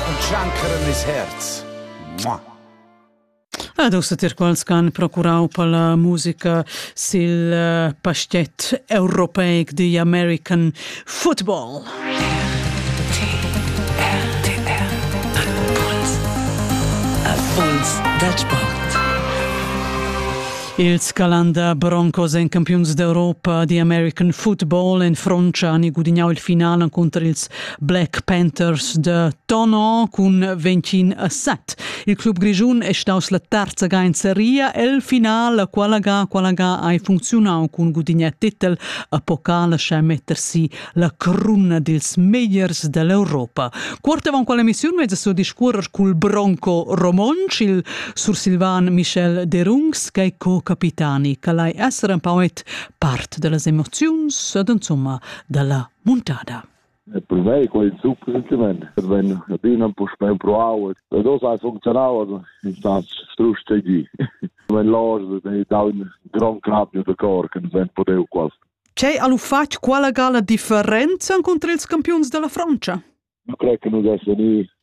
und tschanceren ils herz. Mua! Ed ussa tir quals che han procurau per la musica sil eh, pastet europeic The American Football. Erfolgs da sport. Ils Calanda Broncos en campiuns d'Europa di American Football en Frontscha han gudignau il final encunter ils Black Panthers de Tonon cun 25 a 7. Il club grischun è staus la terza ga in seria el final, la quala ga, quala ga hai funzionau cun gudignar titel a pokala sche mettersi la cruna dils megliers dell'Europa. Quart avant quella emissiun mezza so discuorer cul Bronco Romonc, il sursilvan Michel Derungs, che co-capitani, che lai essere un po' part delle emozioni, ed insomma dalla muntada. Per mei quei super sentiment, che vegn adina puspei empruau, da dos hai funzionau, also è stato strusch tgi. Wenn los dei daun gran clap de cor che vent podeu quasi. C'è al uffat quala gala differenza contro ils campions della Francia? Io credo che noi dessimo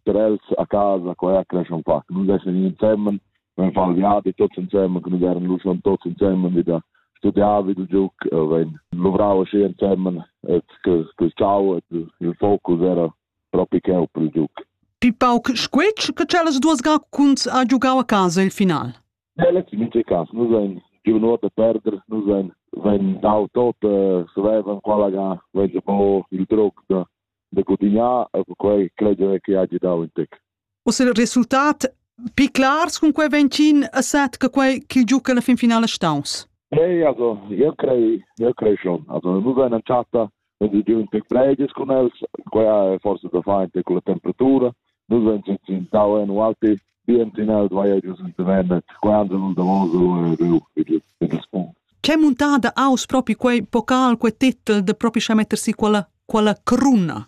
per els a casa, qua cresce un po', noi dessimo insieme valviar di tutti insieme, che noi eran luscion tutti insieme, wieder studiavi il giuc, wenn lovrava schi insieme, et que ciao, il focus era proprio che per il giuc. Pipauc squetsch che cellas duas gacuns ha giocau a casa il final. Ja, letztes mit Cas, nu sein giovnot da perder, nu sein wenn dau tot se vevan quella ga, wenn se po il truc da de continuar, e quei credo che ha dau in tec. Uss il resultat pi clars cun quei ventschin a set che quei ch'il giuca alla fin finala staus? Ei, also, io crei, io crei schon. Also, nu va in chatta, wenn sie diun tec breides con els, quella è forse da fare con la temperatura, nu va in in tau en alti, bien tinel vai gius in tevennet, quando da voso e riu, in das punct. C'è montada aus propi quei pocal, quei titel de propi scha mettersi quella, quella cruna?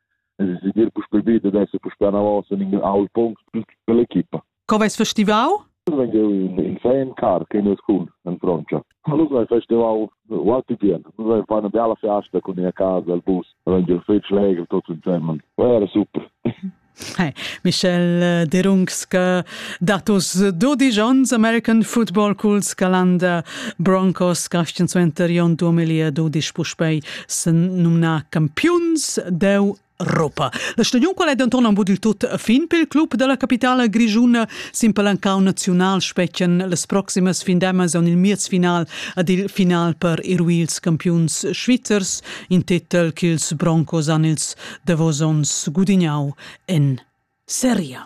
Es es dir puspel vita adesso puspel anavos in in aul punkt per l'equipa. Co vais festivau? Vengo in fan car che ne school in Francia. Nous vai festival wat bien. Nous vai fare una bella festa con a casa al bus. Vengo fetg legre tutto insieme. Era super. Hey, Michel Derungs che datos 12 onns American Football Cools Calanda Broncos cascen suenter Jon 2012 puspei senumnà campiuns deu Europa. La stagiun qual è denton en il tut fin pel club dalla capitala grischuna sin palancau naziunal specchian las proximas findemas en il miezfinal ad il final per ir ils campiuns svizzers, in titel che ils Broncos han ils davos onns gudignau en Serie.